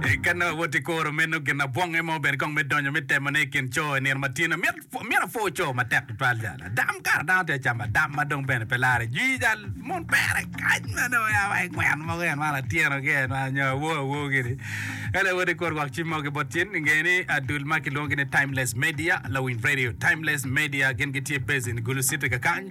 Eka nongo wot i kuro meno gin abwonge mo bene kong me donyo me temone i kin co i nino ma tino. Myero pw- myero apwo co matek tutwal jalo. Adam kara dano tye acamo adam ma dong bene pe lare jwi jal mon pere kany ma dong ya wa i gweno mogo en man atyeno ki en man nyo awo awo gini. Ela wot i kuro gwak cim mogo ki bot cin ingeye ni ah, dul ma kilwongo ni Timeless Media, Lawiny Radio. Timeless Media gin gitye based in Gulu City kakany.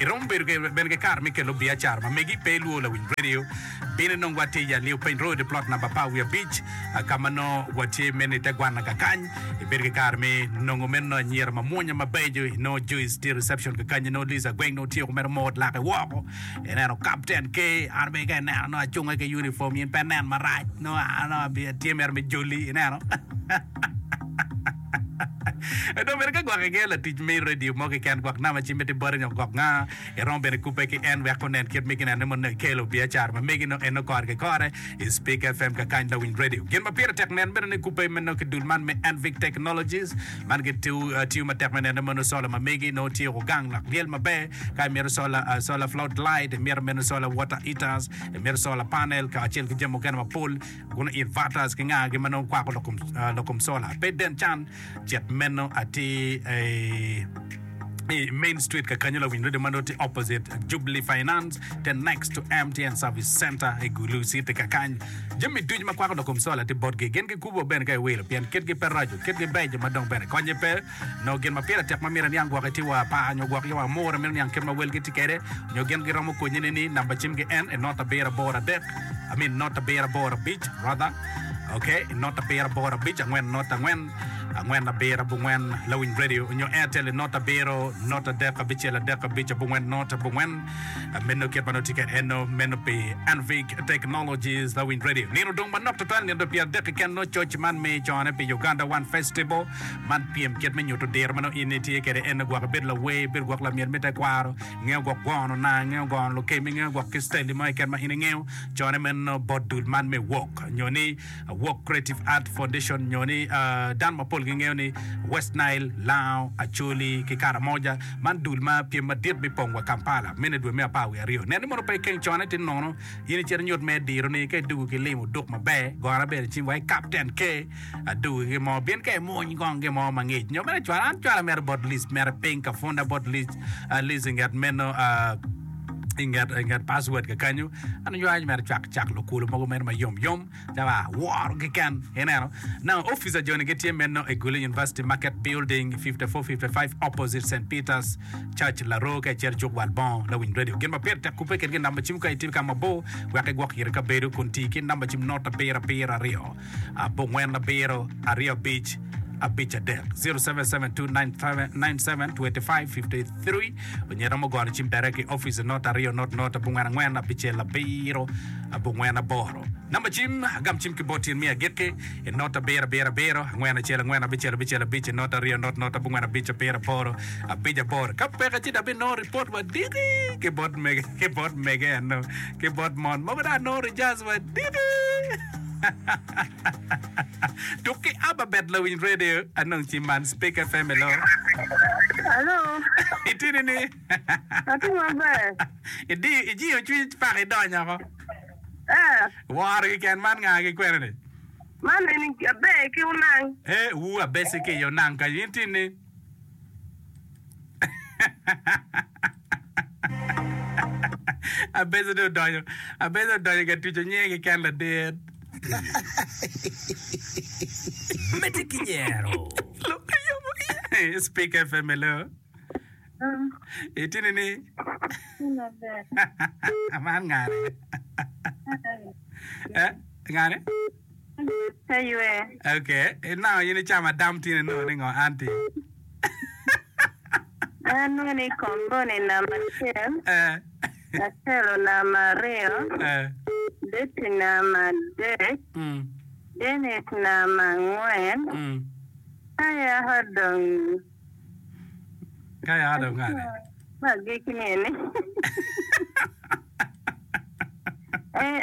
Iromo bedo bene ki kare me kelo biacara ma megi pe ilwor lawiny radio. Bino inong watye i Alio Piny Road, plot namba apar wiye abic, ka ma nongo watye meno i te gwannaga kany. Ibedo ki kare me nongo meno anyira mamwonya mabeco. Inongo Joyce tye i reception kakanyi, inongo Liz Agweng nongo tye kumeno moot lake woko. Ineno Kapten K, an bene ka inena nongo acunge ki unifom in pe inen marac, nongo an atye mere me joli, ineno. Dong bene ka gwok iger latic me redio mo keken gwok nama ci miti bote nyo gwok nga, iromo bene kubbe ki en wek onen kit me ginene mono ekelo biacara ma megi nongo en nongo kore ki kore i Speak FM kakany lawiny redio. Gin ma pire tek nen bene ni kubbe me nongo ki dul man me Anvic Technologies man gitiyo matek me nene mono sola ma megi nongo tye woko gang lok lyel maber ka imito sola, sola flood light, imito meno sola water heaters, imito sola panel kacel ki jami mukene mapol Kun it Vatas ki ngagi ma nongo kwako lokom sola pe den can, cit meno atir i Main Street kakanyo lawiny redio ma nongo tye opposite Jubilee Finance te next to MTN Service Center i Gulu City kakany. Jami ducu ma kwako lokom sola tye botgi. Gin gikubo bene ka iwilo pien kitgi pe raco, kitgi beco ma dong bene konnye pe. nongo gin ma pire tek ma myero aniang gwok iti wa pa nyo gwok yawa mura meno niang kit ma welgi tye kwede nyo gin giromo konyi ne ni namba cim gi en inot abiro aboro adek I mean not abiro aboro abic rather ok inot abiro aboro abic angwen not angwen angwen abiro abongwen lawiny radio onyo airtel inot abiro not adek abicel adek abic abongwen not abongwen meno kit ma nongo tye kwede eno meno pi anvic technologies lawiny radio nino dong manok tutwal nino dong pyera dek keken nongo coc man me cone pi uganda one festival Man pyem kit me nyuto diro ma nongo in itye kwede, ento gwok ibedo lawer, ibedo gwok lamyel me tekwaro, ingeyo gwok gono naa, ingeyo gono lukemi, ingeyo gwok ki citali mo keken ma in ingeyo. Cone meno bot dul man me Walk nyo ni Walk Creative Art Foundation nyo ni dano mapol gingeyo ni West Nile, Lango, Acholi ki Karamoja. Man dul ma pyem madit bipong wa Kampala meno i dwe me apar wiye aryo. Nen ni mono pe ikeng cone ti nono in icito inyut mere dironi ka idwogo ki limo duk maber. Gora bene cing wa ki Captain K. Adu ki gin mo pien ka imwony kong gin mo mangic nyo bene cwalo an cwalo amito bot list mere piny ka punda bot list ah, list inget meno ah, inget inget password kakanyo an onyo an mero cwak cak lokulu mogo meno ma yom yom calo ah, woro keken ineno na office ajoni gitye meno i Gulu University Market Building 5455 opposite St Peters Church Laroo ka icito cuk wal bongo lawiny radio gin ma pire tek kubbe kit gin namba cim ka itye ka mabor wek igwok iri kabedo kun tii ki namba cim not abiro abiro aryo abongwen abiro aryo abic abic adek 0772972553 onyo iromo gono cim direct i office not aryo not not abongwen angwen abicel abiro abongwen aboro number cim agam cim ki bot tyen me agikki i not abiro abiro abiro angwen acel angwen abicel abicel abic i not aryo not not abongwen abic abiro aboro abic aboro ka peka ci dabi nongo report wadiki ki bot mege ki bot mege eno ki bot mon mogo dong anongo rejas wadiki Tuk ki Abba bet lawiny radio anong ci man Speak FM hello. Alo, Itye nini? atye maber. Idi ijiyo cwiny paka idonyo oko. Eh, Woro kiken man nga ki kwene ni? man eni abe ki unang. Eh, wu abesi ki yo nang ka in tini. Abeco dong odonyo Abeco odonyo ka tuco nyinge keken ladit. Medde ki nyero. Lok ki yomo iye. Speaker FM hello. Itini ni man ngane? Eh, ngane? Pe ywe. Okay, inango in icamo adam tin inongo ni ngo anti? En nongo ni komboni namba acel, Eh, Acelo namba aryo, eh, Betty namba adek, mm, Dennis namba angwen, mm. ka yaka dong Ka yaka dong ngane? ma agikki ni eni. Eh,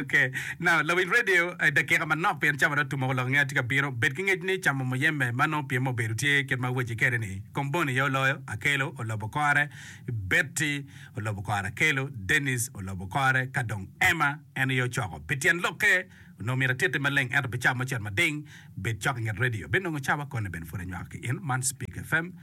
Ok, now lawiny radio I dakika manok pien cawa dong tumoko lok nge atye ka bino, bed ki ngec ni camo muyembe ma nongo pyem obedo tye kit ma awaci kede ni Komboni aye oloyo, Akelo olobo kore, Betty olobo kore Akelo, Denis olobo kore ka dong Emma en aye ocoko. Pi tyen lokke onongo myero atitte maleng ento pi cawa mucel mading bed cok inget radio abinongo cawa koni bene pud anywako ki in man Speak FM.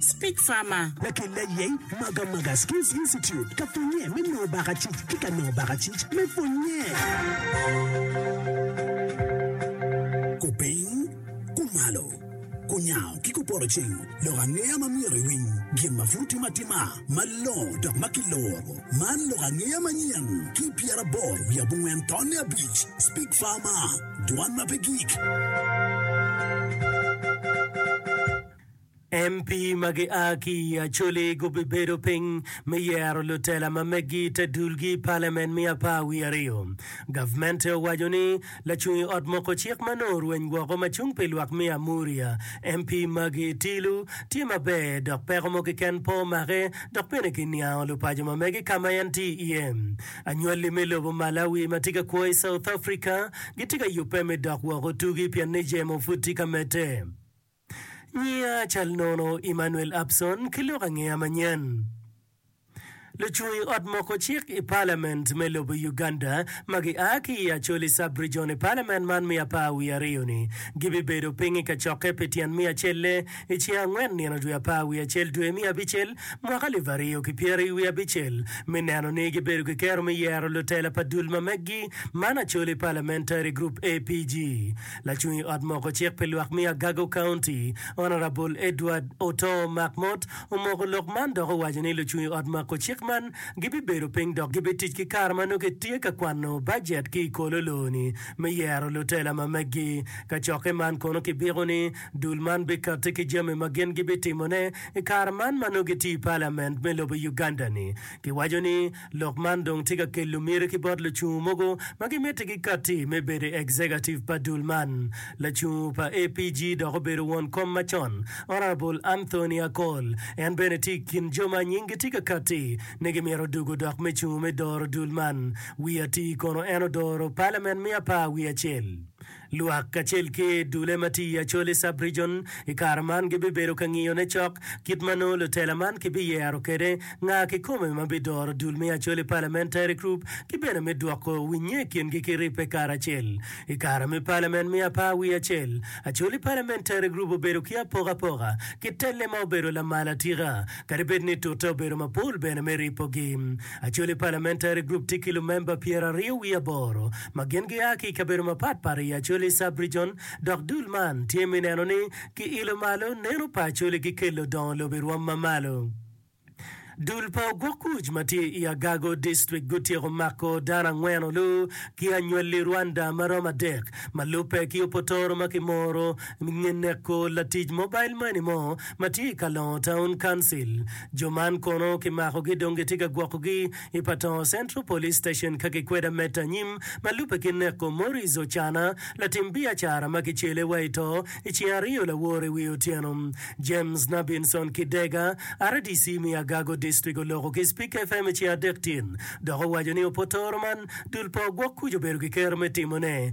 Speak Farmer. Lakel layeny Maga Maga Skills Institute ka pwonye me nongo baka cic ki ka nongo baka cic me pwonye. Kupiny, kumalo, kunyango ki kuporo cing lok angeya ma myero iwiny gin ma pud timo atima malongo dok ma kiloro. Man lok angeya manyen ki pyeraboro wiye abongwen tonne abic. Speak Farmer, Dwan ma pe gik. MP ma gia ki i Acholi gubibedo piny me yero lutela ma meggi i te dulgi i Palamen me apar wiye aryo. Gavmente owaco ni lacung i ot moko cik ma nongo orweny woko ma cung pi lwak me Amuria, MP Maggie Tilu, tye maber dok peko mo keken pe omake dok bene giniango lupaco ma mege ka ma en tye iye. Anywalli me lobo Malawi ma tye ka kwo i South Africa gitye ka yubbe me dok woko tugi pien ni jemo pud tye ka medde. Nyinga cal nono Emmanuel Abson ki lok angeya manyen. Lucung ot moko cik i palament me lobo Uganda ma gi a ki i Acholi Sub-Region i palament man me apar wiye aryo ni gibibedo piny i kacokke pi tyen me acelle i ceng angwen nino dwe apar wiye acel dwe me abicel mwaka alip aryo ki pyeri wiye abicel me neno ni gibedo ki kero me yero lutela pa dul ma meggi man Acholi Parliamentary Group APG. Lacung i ot moko cik pi lwak me Agago County, Honourable Edward Otoo Makmot omoko lok man dok owaco ni lucung i ot mako cik man gibibedo piny dok gibitic ki kare ma nongo kitye ka kwano bajet ki i kolo loo-ni me yero lutela ma meggi. Kacokke man kono kibiko ni dul man bikati ki jami ma gin gibitimone i kare man ma nongo gitye i palament me lobo Uganda-ni. Giwaco ni Lok man dong tye ka kelo miti ki bot lucungu mogo ma gimiti gikatti me bedo i Executive pa dul man. Lacungu pa APG dok obedo won kom macon, Honourable Anthony Akol, en bene tye i kin jo ma nyinggi tye ka katti ni gimito dugo dok me cungu me doro dul man wiye atir kono en odoro Parliament me apar wiye acel. Lwak kacel ki dulle ma tye i Acholi Sub-Region i kare man gibibedo ka ngiyone cok kit ma nongo lutela man kibiyero kwede nga kikome ma bidoro dul me Acholi Parliamentary Group ki bene me dwoko winnye i kingi ki ribbe karacel. I kare me palament me apar wiye acel, Acholi Parliamentary Group obedo ki apokapoka ki telle ma obedo lamal atika. Kadi bed ni tute obedo mapol bene me ripogi, Acholi Parliamentary Group tye ki lumemba pyeraryo wiye aboro ma gin gia ki i kabedo mapatpat i Acholi Sub-Region dok dul man tye me neno ni kiilo malo neno pa Acholi ki kelo dongo lobo i rwom ma malo. Dul pa ogwok kuc ma tye i Agago District gutyeko mako dano angwen olu ki anywali Rwanda ma romo adek ma lubbe ki opotoro ma kimoro Me neko latic mobile money mo ma tye i Kalongo Town Council. Jo man kono kimakogi dong gitye ka gwokogi i Patongo Central Police Station ka gikwedo amet anyim ma lubbe ki neko Maurice Ocana, latim biacara ma kicele wa i to i ceng aryo laworo i wi otyeno. James Nabinson Kidega, rdc me Agago District oloko ki Speak FM i ceng adek tyen dok owaco ni opotoro man dul pa ogwok kuc obedo ki kero me timone.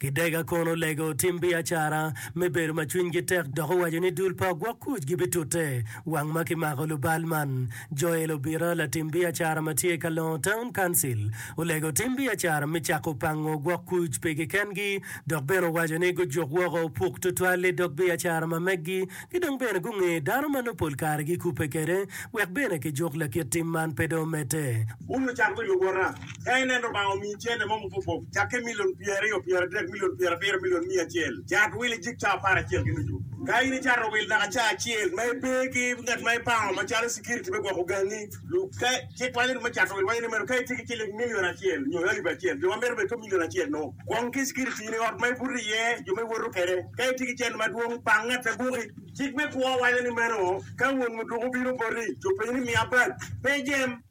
Gidega kono lego tim biacara me bedo ma cwinygi tek dok owaco ni dul pa ogwok kuc gibitute wang ma kimako lubal man. Joel Obira, latim biacara ma tye i Kalongo Town Council, olego tim biacara me cako pango ogwok kuc pi kikengi dok bene owaco ni gujuk woko opuk tutwal i dog biacara ma meggi ki dong bene gunge dano ma nongo pol kare gikubbe kwede wek bene kijuk lakit tim man pe dong omedde. Bul ocako ki lubota Ka ineno Lubanga omiyi cente mo mapopop, cakke milion pyeraryo, pyeradek, milion pyerabiro, milion miya acel, cat wil ijik caa apar acel ki nucu. Ka in icato wil naka caa acel ma ipe ki ngat ma ipango macalo cikiriti me gwoko gangi, cik waco ni me cato wil waco ni meno ka itye ki ciling milion acel nyo alip acel, jo ma mito bedo ki milion acel-nu, kwong ki cikiritini, ot ma ibuto iye, jo ma iwoto kwede. Ka itye ki cente madwong, pang ngat abuki. Cik me kwo waco ni meno ka won muduku obino boti, ci openyi ni, 'Miya bag, pe ijem?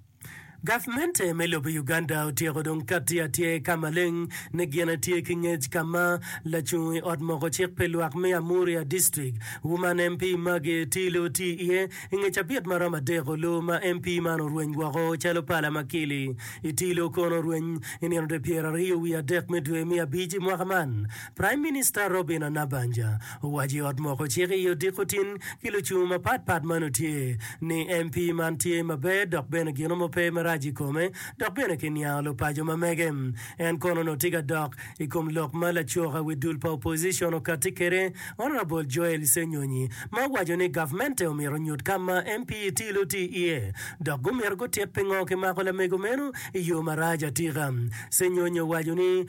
Gavmente me lobo Uganda otyeko dong katti atyer ka maleng ni gin etye ki ngec ka ma lacung i ot moko cik pi lwak me Amuria District, Woman MP Maggie Etilu tye iye i nge cabit ma romo adek olu ma MP man orweny woko calo pala ma kili. Etilu kono orweny i nino dwe pyeraryo wiye adek me dwe me abic i mwaka man. Prime Minister Robina Nabanja Owaco i ot moko cik i odiko tin ki lucung mapat pat ma nu tye ni MP man tye maber dok bene gino mo pe marac i kome dok bene ki niango lupaco ma mege. En kono nu tye ka dok i kom lok ma lacuka wi dul pa opposition okatti kede Honourable Joel Ssenyonyi ma owaco ni gavmente omyero onyut ka ma MP Itilo oti iye dok gumyero gutit pingo kimako lamego meno i yo marac atika. Ssenyonyi owaco ni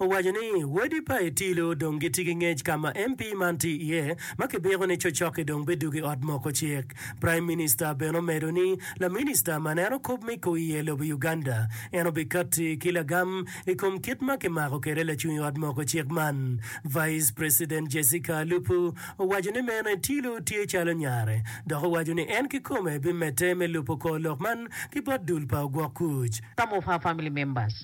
owaco ni wadi pa Itilo dong gitye ki ngec ka ma MP man tye iye ma kibiko ni cocokke dong bidwogo i ot moko cik. Praim Minista bene omedo ni laminista ma neno kop me koi iye lobo Uganda en obikatti ki lagam i kom kit ma kimako kwede lacung i ot moko cik man. Vice President Jessica Alupo owaco ni meno Itilo tye calo nyare dok owaco ni en kikome bimedde me lubo kor lok man ki bot dul pa ogwok kuc. Some of her family members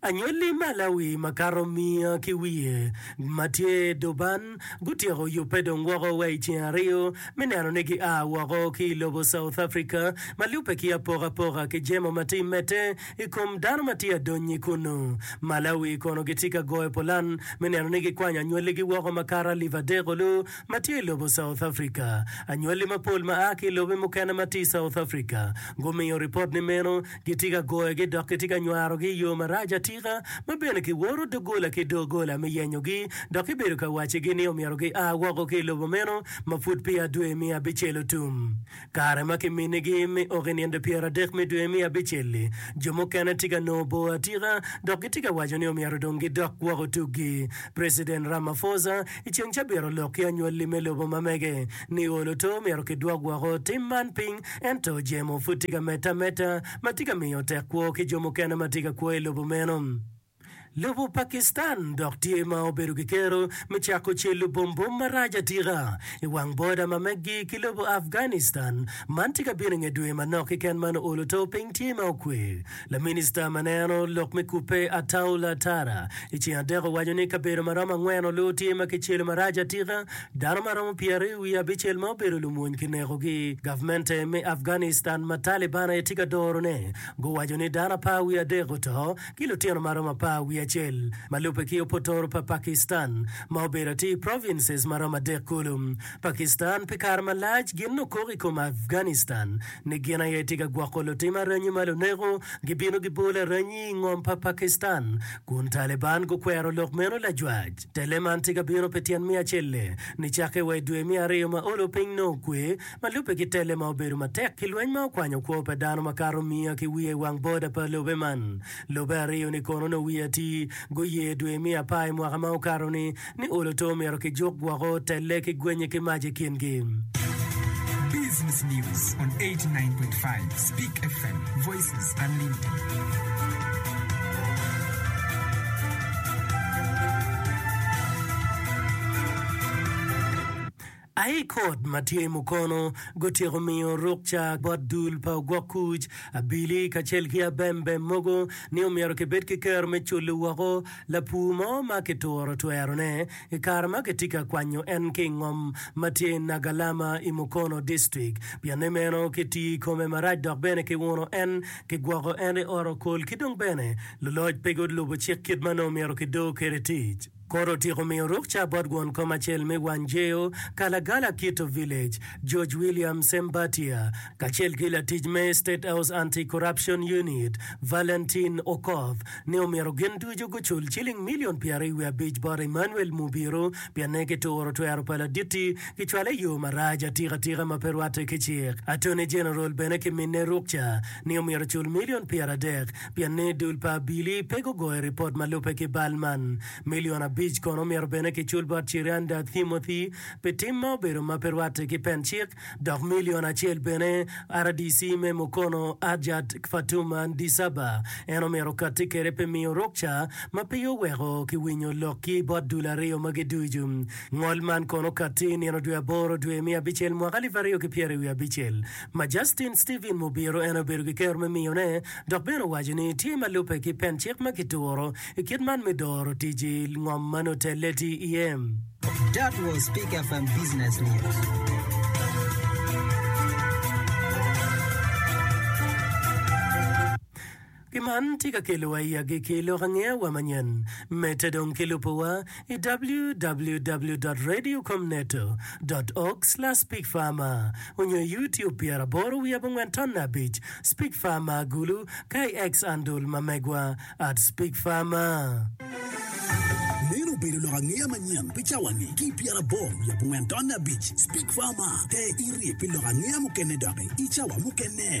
Anyolli ma Lawi makato miya ki wiye ma tye i dog ban gutyeko yubbe dong woko wa i ceng aryo me neno ni gia woko ki i lobo South Africa ma lubbe ki apokapoka ki jemo ma tye i mette i kom dano ma tye adonyi kunnu. Malawi kono gitye ka goyo pulan me neno ni gikwanyo anyolligi woko makato alip adek olu ma tye i lobo South Africa. Anyolli mapol ma a ki i lobe mukene ma tye i South Africa gumiyo ripot ni meno Gitye ka goyogi dok gitye ka nywarogi i yo marac atika, ma bene kiworo doggola ki doggola me yenyogi, dok kibedo ka waccigi ni omyero gia woko ki i lobo meno ma pud peya dwe me abicel otum. Kare ma kiminigi me ok i nino pyeradek me dwe me abicel-li, jo mukene tye ka nongo bor atika dok gitye ka waco ni omyero dong gidok woko tuggi. Preciden Ramaphosa i ceng cabit olok ki anywalli me lobo ma mege, Nio luto myero kidwok woko tim man piny, ento jemo pud tye ka medde ameda ma tye ka miyo tek kwo ki jo mukene ma tye ka kwo i lobo meno. Lobo Pakistan dok tye ma obedo ki kero me cako celo bombom marac atika i wang boda ma meggi ki lobo Afghanistan. Man tye ka bino i nge dwe manok keken man oluto piny tye ma okwe. Laminista ma neno lok me kubbe Ataullah Tara i ceng adek owaco ni kabedo ma romo angwen oloo tye ma kicelo marac atika, dano ma romo pyeraryo wiye abicel ma obedo lumwony kinekogi. Gavmente me Afghanistan ma Taliban aye tye ka dorone guwaco ni dano apar wiye adek oto ki lutino ma romo apar wiye acel ma lubbe ki opotoro pa Pakistan ma obedo atir provinces ma romo adek kulu. Pakistan pi kare malac gin okok i kom Afghanistan ni gin aye tye ka gwoko lutim aranyi ma luneko gibino gibolo aranyi i ngom pa Pakistan kun Taliban gukwero lok meno lajwac. Telle man tye ka bino pi tyen me acel-le ni cakke wa i dwe me aryo ma olo piny nongo okwe ma lubbe ki telle ma obedo matek pi lweny ma okwanyo kwo pa dano makato miya ki wiye i wang boda pa lobe man Lobe aryo-ni kono nongo wiye atir guye dwe me apar i mwaka ma okato-ni ni olo to omyero kijuk woko, telle ki gwenye ki mac i kingi. Business News on 89.5 Speak FM, Voices Unlimited. Aii Kot ma tye i mukono gutyeko miyo rukca bot dul pa ogwok kuc, abili kacel ki abembem mogo ni omyero kibed ki kero me culu woko lapur mo ma kituro twerone i kare ma kitye ka kwanyo en ki i ngom ma tye i Nagalama i Mukono District. Pianne meno kitiyo i kome marac dok bene kiuno en, kigwoko en i Ot Okol ki dong bene luloc pe gulubo cik kit ma nongo myero kido kwede tic. Kore otyeko miyo rukca bot gwon kom acel me Wanjeyo, Kalagala Kito Village, George William Sembatia, kacel ki latic me State House Anti-Corruption Unit, Valentin Okoth, ni omyero gin ducu gucul ciling milion pyeraryo wiye abic bot Emmanuel Mubiru pienne kituro twero pa Laditi kicwale i yo marac atikatika ma pe rwatte ki cik. Attorney General bene kiminne rukca ni omyero ocul milion pyeradek pienni dul pa Billy pe gugoyo ripot ma lubbe ki bal man. Milion abic kono omyero bene kicul bot Cheriander Thimothy pi tim ma obedo ma pe rwatte ki pen cik, dok milion acel bene rdc me Mukono Hajjat Fatuma Ndisaba en omyero okatti kwede pi miyo rukca ma pe oweko kiwinyo lokgi bot dul aryo magi ducu. Ngol man kono okatti i nino dwe aboro dwe me abicel mwaka alip aryo ki pyeraryo wiye abicel. ma Justin Stephen Mobiro en obedo ki kero me miyone, dok bene owaco ni tye ma lubbe ki pen cik ma kituro i kit man me doro tic i ngom ma nongo telle tye iye. That was Peak FM Business News. Pi man, tye ka kelowa i agikki lok angeyawa manyen, medde dong ki lubowa i www.radiocomneto.org/speakfarmer onyo i YouTube pyera aboro wiye abongwen tonna abic, Speak Farmer agulu, ka i X andul ma megwa at speakfarmer. Meno obedo lok angeya manyen pi cawa-ni ki i pyera aboro wiye abongwen tonna abic, Speak Farmer. Ter iri pi lok angeya mukene doki i cawa mukene.